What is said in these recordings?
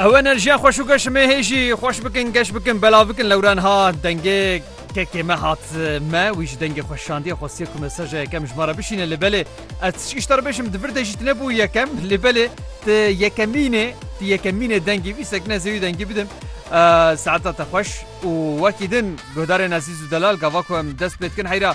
Ew enerjiya xweş û geş me hê jî xweş bikin geş bikin belav bikin lewran hat dengê kekê me hat me wî ji dengê xwe şandiye xwestiye ku mesaja yekem ji me re bişîne li belê ez ti îşta re bêjim di vir de jî tu nebû yekem li belê ti yekemînê ti yekemînê dengî wî sekine ez ê wî dengî bidim saeta te xweş û wekî din guhdarên ezîz û delal gava ku em dest pê dikin heyra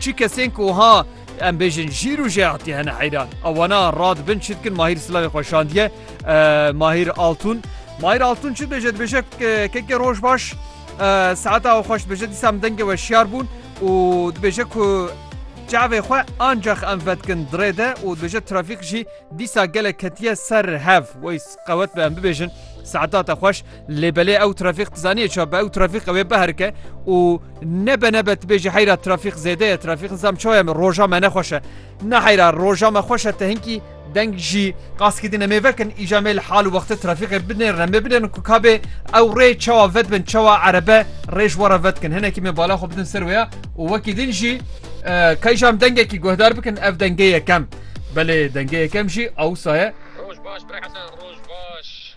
Çi kesên ku wiha em bêjin jîr û jeatî hene heyran. A wana ra dibin çi dikin Mahîr silavê xwe şandiye Mahîr Altûn. Mahîr Altûn çi dibêje dibêje kekê roj baş saeta we xweş dibêje dîsa min dengê we şiyar bûn û dibêje ku çavê xwe ancax em vedikin dirê de û dibêje trafîk jî dîsa gelek ketiye ser hev wey qewet be em bibêjin saeta te xweş. Lê belê ew trafîk tu zanî ça be ew trafîk ew ê biherike û nebe nebe tu bêjî heyra trafîk zêde ye trafîk nizam çaye me roja me nexweş e ne heyra roja me xweş e te hinkî deng jî qaskî dine mêve kin îja mêl hal û wextê trafîqê binê remê binêrin ku kabê ew rê çawa vet bin çawa erebe rêj were vet kin hinekî me bala xwe bidin ser wêya û wekî din jî kayjam dengekî guhdar bikin ev dengê yekem belê dengê yekem jî ewsaye Roj baş bre hesen roj baş.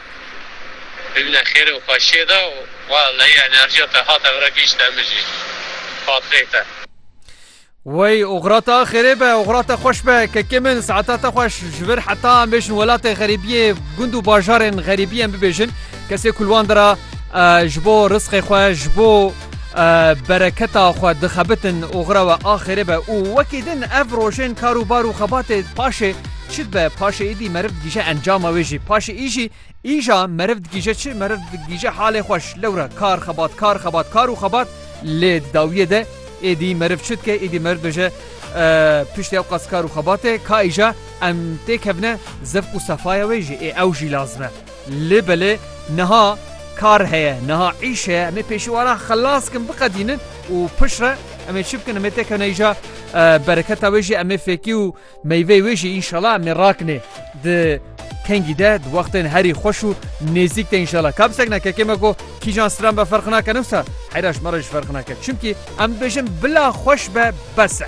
Bimîne xêrê û xweşiyê de û wa leyî enerjiya te hate vir e gihîşte min jî fatireyê te. Wey oxira te xêrê be, oxira te xweş be kekê min, saeta te xweş ji vir heta em bêjin welatê xerîbiyê, gund û bajarên xerîbî em bibêjin, kesê ku li wan de re ji bo risqê xwe, ji bo. Bereketa xwe dixebitin oxira we axêrê be û wekî din ev rojên kar û bar û xebatê paşê çi dibe? Paşê êdî meriv digîje encama wê jî. Paşê êjî êja meriv digîje çi? Meriv digîje halê xweş. Lewra kar xebat, kar xebat, kar û xebat lê di dawiyê de êdî meriv çi dike? Êdî meriv dibêje piştî ewqas kar û xebatê ka êja em têkevine zevq û sefaya wê jî ê ew jî lazim e. Lê belê niha kar heye, niha îş heye, em ê pêşiwaran xelas bikin, biqedînin û piştre em ê çi bikin, em ê têkevin îja bereketa wê jî em ê fêkî û meyveyê wê jî înşela em ê rakinê di kengî de di wextên herî xweş û nêzîk de înşela. Ka bi sekna kekê me ku kîjan stran be ferq nake ne wisa heyra ji me re jî ferq nake. Çimkî em dibêjin bila xweş be bes e.